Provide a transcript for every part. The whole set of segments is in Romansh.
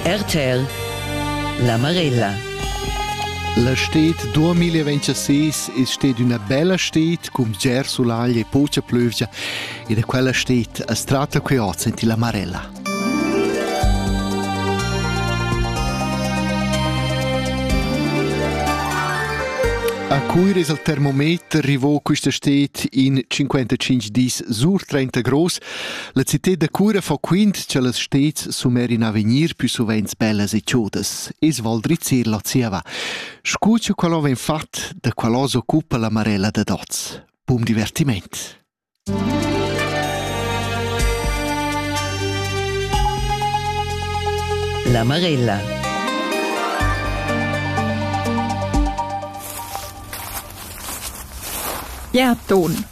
RTL La Marella La stet 2026 è stata una bella stet con ger solagl e poca plövgia e da quella stet a strata che ho senti la Marella. A cui es il termometer rivò questa stet in 55 dis sur 30 gross La cità da cura fa quint che las stets sumer in avegnir più sovents bellas e chodas, es Val Drizzer la zieva. Scu cha quell'o vegn fat, da quell'o s'occupa la Marella da Dots. Bun divertiment! La Marella Gerd Don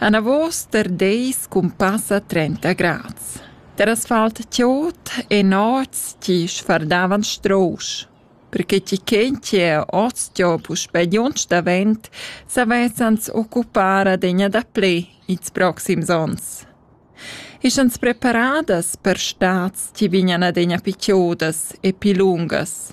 Anavos der deis cun passa trenta grads. Der asfalt tiot e nots ti sfardavan strousch. Perché ti chen che ostio puspè giunch davent savezzans occupar adegna da ple ils proxims ons. Ischans preparadas per stads ti vignan adegna pichiodas e pi lungas.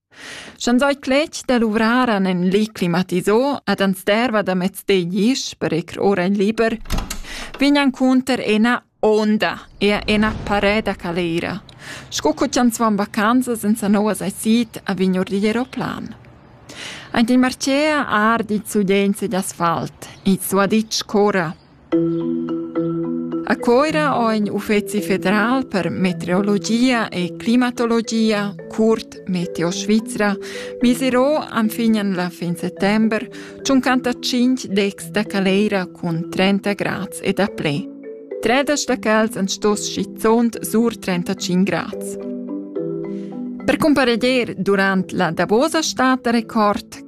Sch'ans oi cletg da luvrar an ün li climatisò ed ans derva da mez deglisch per ir ora in liber, vign encunter ena onda e ena parè da caleira, sco co chi ans van vacanzas in sa nouvas aisit a vign our digl eroplan. Aint il marcea ardi il sulegl sugl asfalt, il suaditsch corra. A Coira ho ün uffezi federal per meteorologia e climatologia, curt Meteo Svizra, miserò enfin la fin settember tschuncantacinc decs da caleira cun 30 grads e daplè. Tredas da cals han stos schizunt sur 35 grads. Per cumpareglier durant la davosa stad da record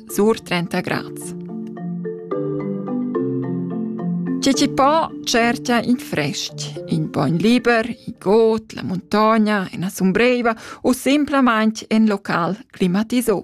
sur 30 grads. C'è chi po cerca in fresc, in bogn liber, in got, la montagna, in sombreiva o semplament in local climatisò.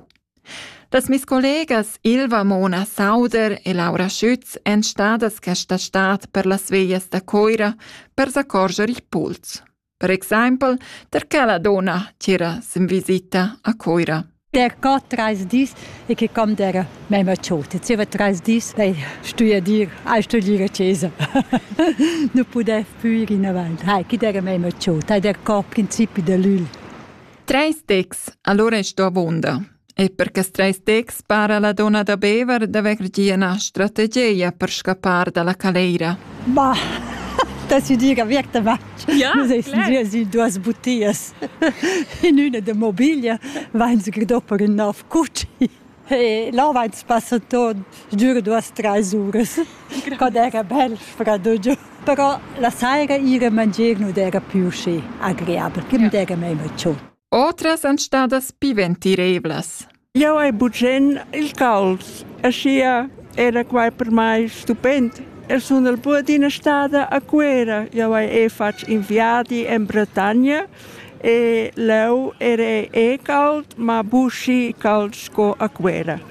Das mis collegas Ilva Mona Sauder e Laura Schütz èn stadas questa stad per las veias da Coira per s'accorger il puls. Per exempel der che la donna tira sin visita a Coira. Der geht drei dis e che kam der mema ciota. Zieva drei dis ei stuier ai stuier chiesa. nu pudev più ir in avanti. Hai, chi der mema ciota, der có principi de l'ul. Treis decs, allora sto avonda. E per quest treis texts para la donna da Bever d'haver gia ina strategia per scappar dalla caleira. Bah, t'as dir che wirkt va. Ja, Nus eis si duas butias. In üna de mobiglia vain se dopo in nov cucci. E là vain passa tot dür duas treis uras. Quad era bel freddo giù. Però la saira ire mangier non era più schi agreabel, che mi dera mei mecciu. Otras èn stadas pi ventiravlas. Jau hai bugen il cals, aschia era quai per mai stupend. Eu sun el pur d'ina stada a Cuera. Jau hai e fatg in viadi en Bretagna e leu era e cald, ma buschi cald sco a Cuera.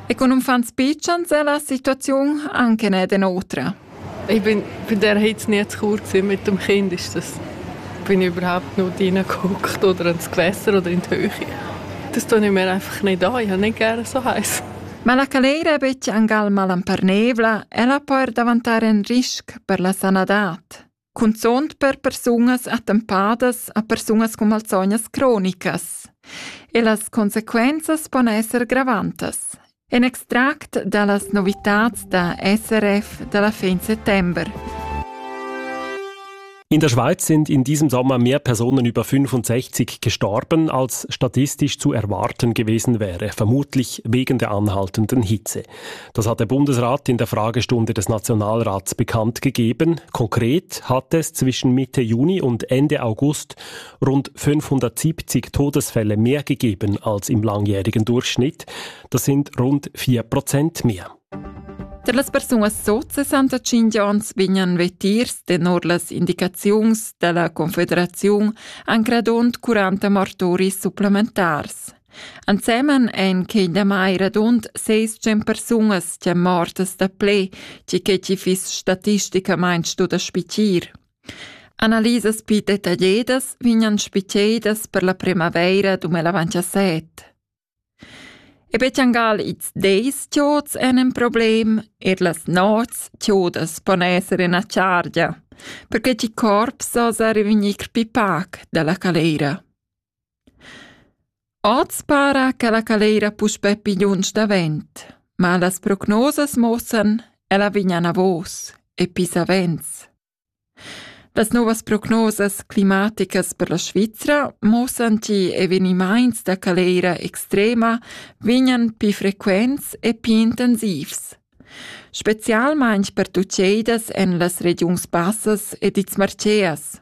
E con uffants pitschens è la situaziun anche ed en otra. Ich bin bei der Hitze nie zu kurz, mit dem Kind ist das bin überhaupt nur reingeguckt oder ins Gewässer oder in die Höhe. Das tue ich mir einfach nicht an, ich habe nicht gerne so heiß. Ma la caleira è betg angal malamparnevla, ella può daventare un rischio per la sanadad. cunzunt per persunas attempadas a persunas con malsognas cronicas. E las consequenzas pon esser gravantas. En extract dallas novitats da SRF dalla fin settember. In der Schweiz sind in diesem Sommer mehr Personen über 65 gestorben, als statistisch zu erwarten gewesen wäre, vermutlich wegen der anhaltenden Hitze. Das hat der Bundesrat in der Fragestunde des Nationalrats bekannt gegeben. Konkret hat es zwischen Mitte Juni und Ende August rund 570 Todesfälle mehr gegeben als im langjährigen Durchschnitt. Das sind rund 4 Prozent mehr. Per las persunas sot 65 ans vegnan vetirs tenor las indicaziuns della Confederaziun an gradond 40 martoris supplementars. Ensemen ein quei damai radund seis tschient persunas ch'ein mortas da ple, tgi che ti fiss statisticamain stu da spitir. Analisas pli detagliadas vegnan spitedas per la primavaira 2017. E betjangal ils deis tiots en en problem, er las nots tiodas pon esser in chargia, perché ti corps osa revenir pipac dalla calera. Oz para che la caleira puspè pigliunsch davent, ma las prognosas muossan ch'ella vegn anavos e pli savens. Las novas prognosas climaticas per la Svizra muossan che evenimaints da caleira extrema vegnan pli frequents e pli intensivs, specialmaing per tuceidas en las regiuns bassas ed ils Marceas.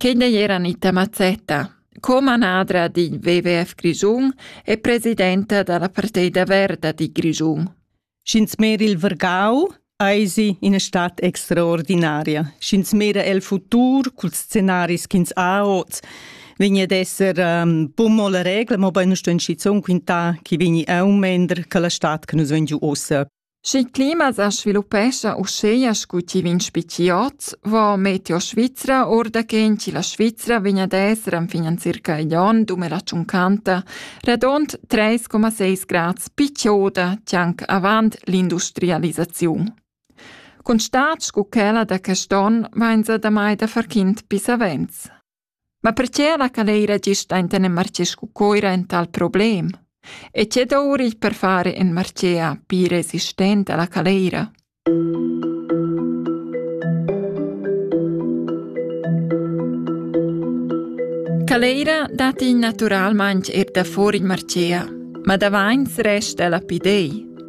Quei n'ei era Anita Mazzetta, co-manadra d'in WWF Grischun e presidenta dalla Parteida Verda di Grischun. Sch'ins mera il Vergau, eisi ina stad extraordinaria. Sch'ins mera el futur culs scenaris ch'ins ha oz, vegni ad esser um, bun la regla, mobein sto in schizun quintar chi vegni aumender che la stad che nus vegn giu ossa. Sch'il clima sa sviluppescha uscheia scu chi vegn spetgi hoz, vo Meteo Svizra our da quint chi la Svizra vegn ad esser enfin in circa igl on dumela tschuncanta radund 3,6 grads pi chioda chi anc avant l'industrialisaziun. Cun stat scu quella da quest on vainsa damai da far quint pis savens. Ma perche la caleira gist aint in marché scu Coira ün tal problem? E che dour il per fare in marchea pii resistent a la caleira? Caleira dat in naturalmaing eir da fuor il marchea, ma davains resta la pidei.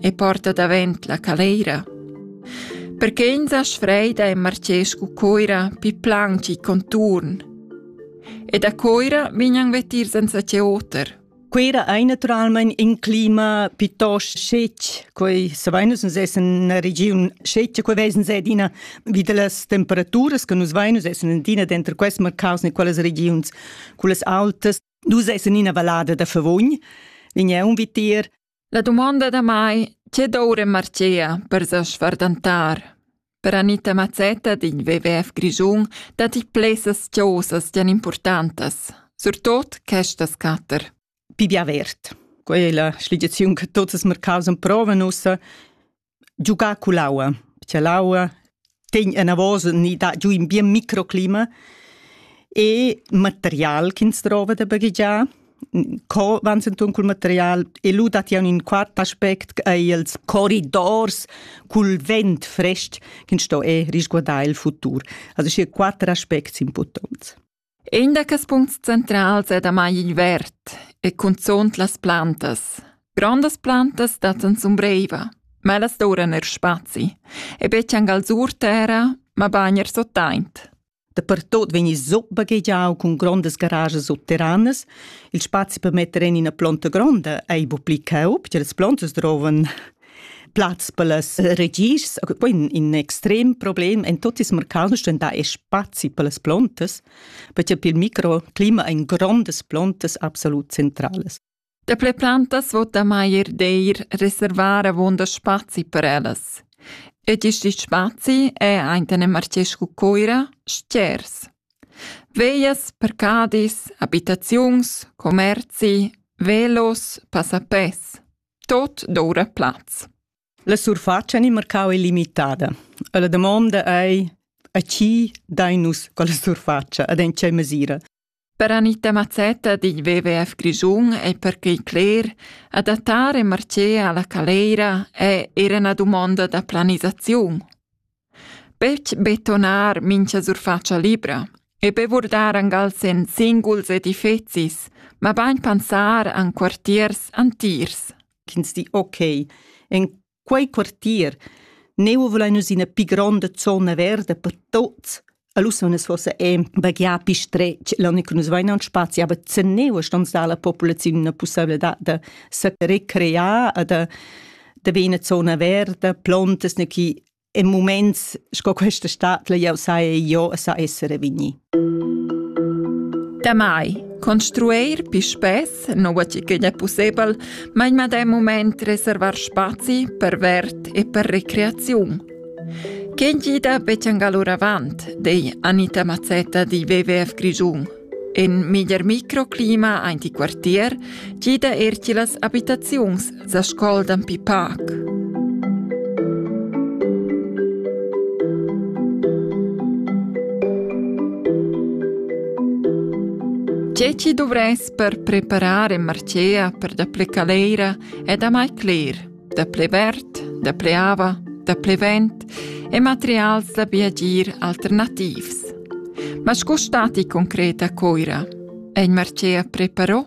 e porta davent la caleira. Perché ins ha sfreida e marcescu coira pi planci conturn. E da coira vignan vetir senza ce oter. Quera ei naturalment in clima piuttosto scetg. Quei saveinus nus essen una region scetga, quei vesen se d'ina vi delle temperaturas che nus veinus essen in dina dentro quest mercaus ne quelles regions, quelles autas. Dus essen in una vallada da Favogn, vigna un vitir La dumonda da mai, tge doura marchea per sa sfardantar? Per Anita Mazzetta digl WWF Grischun datti plessas chosas gian importantas, surtot questas quatter. Pibi avert. Quella è la sligiaziun che tots els mercaus han provan ussa giugar cull'aua, perché l'aua tegn enavos ni dà giu in bien microclima e material ch'ins drova da baghegiar. Co van entun cul material e lu dat jau in quart aspect ei els corridors cul vent frest ch'ins sto e risguardar il futur. Also schi quatter aspects importants. In da quels puncts centrals è damai il verd e cunzunt las plantas. Grondas plantas dattan zumbreiva, ma ellas doran er spazi. E betg angal sur terra, mabain er sottaint. Dapertot vegn il zup baghegiau cun grondas garajas subterranas. Il spazi per metter en ina plonta gronda ei bu pli caub, che las plontas drovan Platz per las regis, quai in extrem problem en tot ils mercans da spazi per las plantas, perché pel microclima ein grondas plantas absolut centrales. Daplè plantas vota mai er d'eir reservar avunda spazi per ellas. Ed isti spazi è aintene Marcescu Coira stgers. Veias, percadis, abitaziuns, commerzi, velos, passapes. tot doura plaz. La surfatscha ni marcau ei limitada. E la damonda ei a chi dai nus quella surfatscha ed en tgei mesira? Per Anita Mazzetta digl WWF Grischun ei perquei cler, adattar e marcer alla caleira è era una dumonda da planisaziun. Betg betonar mincha surfatscha libra e be vurdar angals en singuls edifezis, mabain pensar an quartiers antiers. Ch'ins di ok, en quei quartier neu vulain nus ina pi gronda zona verda per tuts Alussonas fossa è baghià pi stretg l'anna che nus vain aunc spazi, aber zeneu stons dar la populaziun una pussabilità da se recrear e da, da be ina zona verda, plantas ne chi in moments sco questa stat la jau sai jo sa essere vigni. Damai construir pi spess non va ch'igl è possibel, ma in medem moment reservar spazi per vert e per recreaziun. Quén gida betschangal oravant, dei Anita Mazzetta di WWF Grischun. In miglier microclima ein ti quartier gida er ti las abitaziuns sa scol dan pi pac. Tge ci dovres per preparar e marcea per da plecaleira è da mai cler. da ple verd, da ple ava, da ple vent e materials da viagir alternativs. Ma sco stati concret a Coira? Ein Marcea preparò?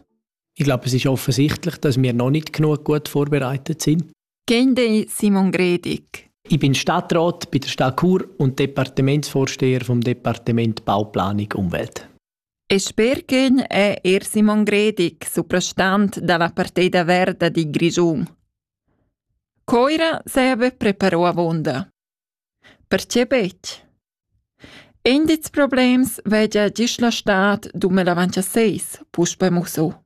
Ich glaube, es ist offensichtlich, dass wir noch nicht genug gut vorbereitet sind. Gende Simon Gredig. Ich bin Stadtrat bei der Stadt Chur und Departementsvorsteher vom Departement Bauplanung Umwelt. E sper ch'ün è eir Simon Gredig, suprastant da la partida verda di Grischun. Coira s'haja be preparò avunda. Perche betg? Indits problems vegia gist la stad dume l'avancha seis, puspe musso.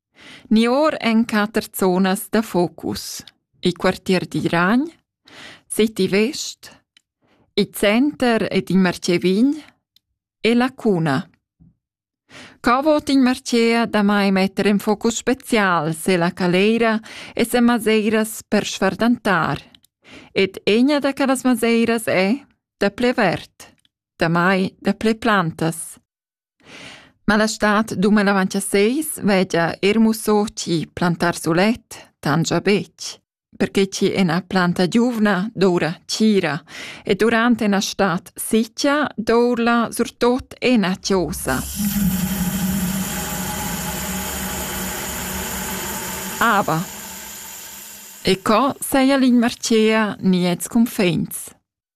Ni or en quatter zonas da focus: il quartier d'Iragn, City West, il center ed il martgè vin e la cuna. Co vot in martgea damai metter en focus special se la caleira e se maseiras per sfardantar? Ed egna da quellas maseiras è da ple verd, damai da ple plantas. Ma la stad dumanavant a seis vegia eir musso chi plantar sulet tangia betg, perche chi ena planta giuvna doura tgira e durant ena stad sitgia dourla surtot ena chiosa. Ava. E co seia l'inmarcea niets cunfegns?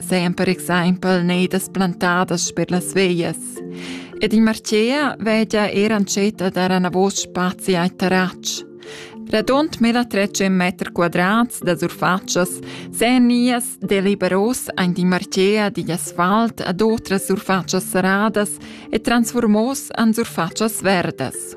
Sempre exempel neidas plantadas per las veias. Ed il Marcea vegia era ancetta dar anavos spazi ai terratsch. Radund 1300 meter quadrats da surfatschas sen nias deliberos ein di Marcea digl asfalt ad otras surfatschas serradas e transformos an surfatschas verdas.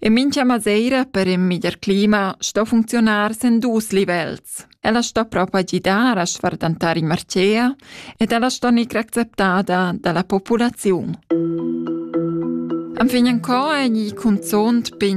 E mincha maseira per ün miglier clima sto funcziunar sen dus livels. Ella sto propa gidar a sfardantar in marcea ed ella sto gnir acceptada da la populaziun. Am fin co è gni cunzont pin